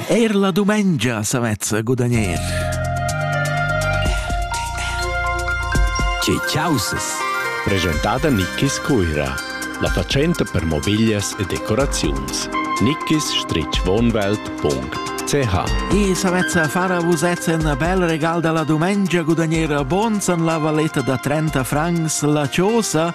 Eir la dumengia s'avezza gudagner. Che chausas! Presentada Nickis Cuira, la fatschenta per mobiglias e decoraziuns. nickis-wohnwelt.ch E s'avezza far a vusez un bel regal da la dumengia gudagner a Bons an la valeta da 30 francs la chosa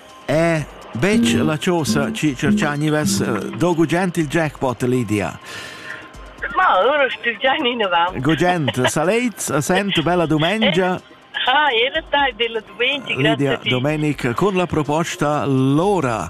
È betg la chosa chi cerchà gnivess do gugent il jackpot, Lydia? Ma ora stu già in avant. Gugent, salets, a sento bella dumengia. Ah, era tardi la domenica, Lydia Domenica con la proposta Lora.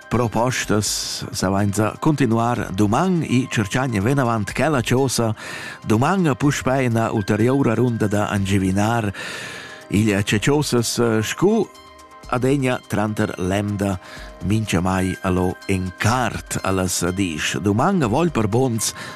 Propostas sainza continuar duman i cerchagna venavant quella chosa duman a puspei ina ulteriora runda da angivinar il ceciosas eh, scu adegna tranter lemda mincha mai allo en cart allas disch. Duman a vol per bons